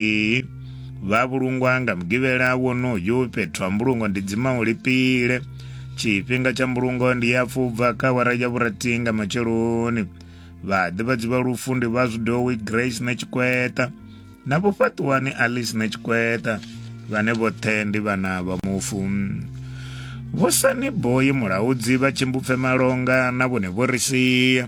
Ee, vha vhulungwa nga mugivhela wonoyu fhethu ha mbulungo ndi dzima u lipile tshifhinga tsha mbulungo ndi ya pfubva kha awara ya vhurathi nga matsheloni vhaḓivhadzi vha lufu ndi vha zwidowi grace na tshikweta na vho fhaṱuwani alice na tshikweta vhane vhoṱhe ndi vhana vha mufu vho sani boyi mulaudzi vha tshimbupfe malonga na vhone vho ri sia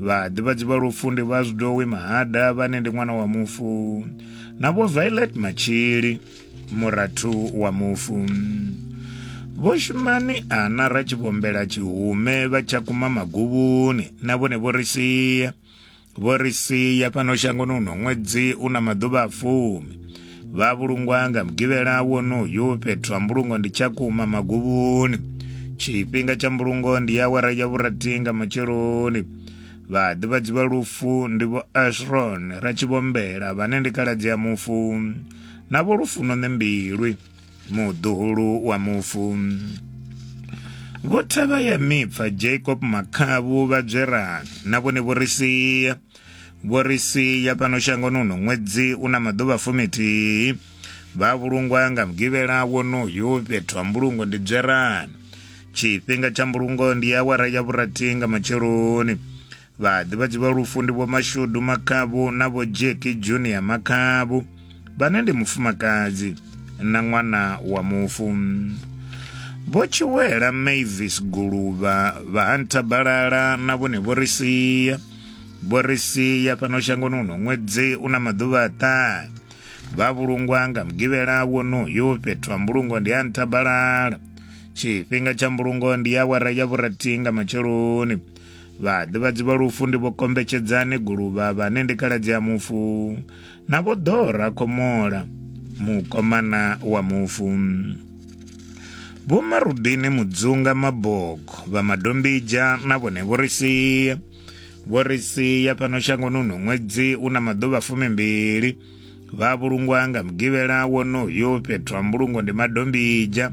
vhaḓivhadzi vha lufu ndi vha zwidowi mahada vhane ndi ṅwana wa mufu na vho violet matshili murathu wa mufu vho shumani ana ra tshivhombela tshihume vha tsha kuma maguvhuni na vhone vho ri sia vho ri sia fhano shangoni uno ṅwedzi u na maḓuvha a fumi vha vhulungwa nga mugivhela wonoyu fhethu ha mbulungo ndi tshakhuma maguvhuni tshifhinga tsha mbulungo ndi ya awara ya vhurathi nga matsheloni vhaḓivhadzi vha lufu ndi vho ashron ratshivhombela vhane ndi kaladzi ya mufu na vho lufuno ṋembilwi muḓuhulu wa mufu vho thavha ya mipfa jacob makhavu vhadzwerani na vhone vho ri sia Vho ri sia fhano shangoni uno ṅwedzi u na maḓuvha fumithihi vha vhulungwa nga mugivhela wonoyu fhethu ha mbulungo ndi dzwerani tshifhinga tsha mbulungo ndi awara ya vhurathi nga matsheloni vhaḓivhadzi vha lufu ndi vho mashudu makhavhu na vho jeki junior makhavhu vhane ndi mufumakadzi na ṅwana wa mufu vho tshiwela mavis guluvha vha hanta balala na vhone vho ri sia vho ri sia fhano shangoni uno ṅwedzi u na maḓuvha aṱahe vha vhulungwa nga mugivhela wonoyo fhethu ha mbulungo ndi ha nthabalala tshifhinga tsha mbulungo ndi ya wara ya vhurathi nga matsheloni vhaḓivhadzi vha lufu ndi vho kombetshedzani guluvha vhane ndi kaladzi ya mufu Na vho Dora Komola, mukomana wa mufu. Vho Marudini Mudzunga Mabogo vha Madombija na vhone vho ri sia. Vho ri sia fhano shangoni uno ṅwedzi u na maḓuvha fumimbili. Vha vhulungwa nga mugivhela wonoyo fhethu ha mbulungo ndi Madombija.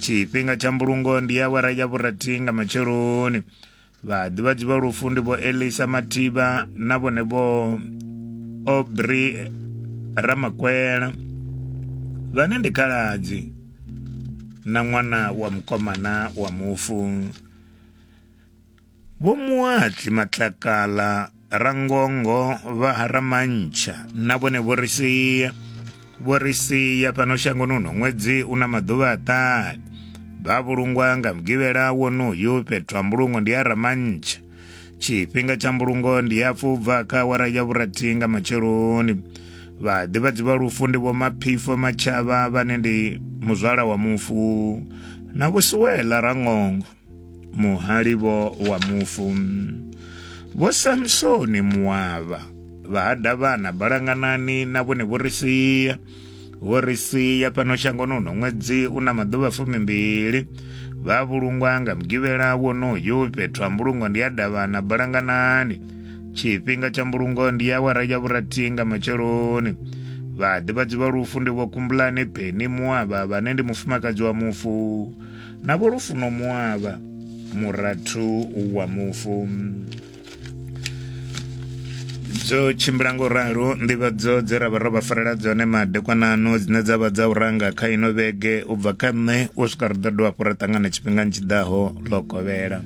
tshifhinga tsha mbulungo ndi awara ya vhurathi nga matsheloni vhaḓivhadzi vha lufu ndi vho elisa mathiba na vhone vho obri ramakwela vhane ndi khaladzi na ṅwana wa mukomana wa mufu Vho Muatli Matlakala, Rangongo, vha ha Ramantshha na vhone vho ri sia vho ri sia fhano shangoni uno ṅwedzi u na maḓuvha a ṱani vha vhulungwa nga mugivhela wonoyu fhethu ha mbulungo ndi ya Ramantshha tshifhinga tsha mbulungo ndi ya fubva kha awara ya vhurathi nga matsheloni vhaḓivhadzi vha lufu ndi vho maphifo matshava vhane ndi muzwala wa mufu na vhusiwela rangongo muhali vho wa mufu vho samsoni muwavha vha ha davhana balanganani na vhone vho ri sia vho ri sia fhano shangoni uno ṅwedzi u na maḓuvha fumimbili vha vhulungwa nga mugivhela wonoyu fhethu ha mbulungo ndi ya davhana balanganani tshifhinga tsha mbulungo ndi ya wara ya vhurathi nga matsheloni vhaḓivhadzi vha lufu ndi vho kumbulane peni muwavha vhane ndi mufumakadzi wa mufu na vho lufuno muavha murathu wa mufu dzo tshimbila ngo ralo nḓivhadzo dze ra vha ro vha farela dzone madekwanano dzine dza vha dza u ranga kha ino vhege u bva kha nṋe u swika ri ḓo dovha hafhu ra ṱangana tshifhingani tshi ḓaho ḽo kovhela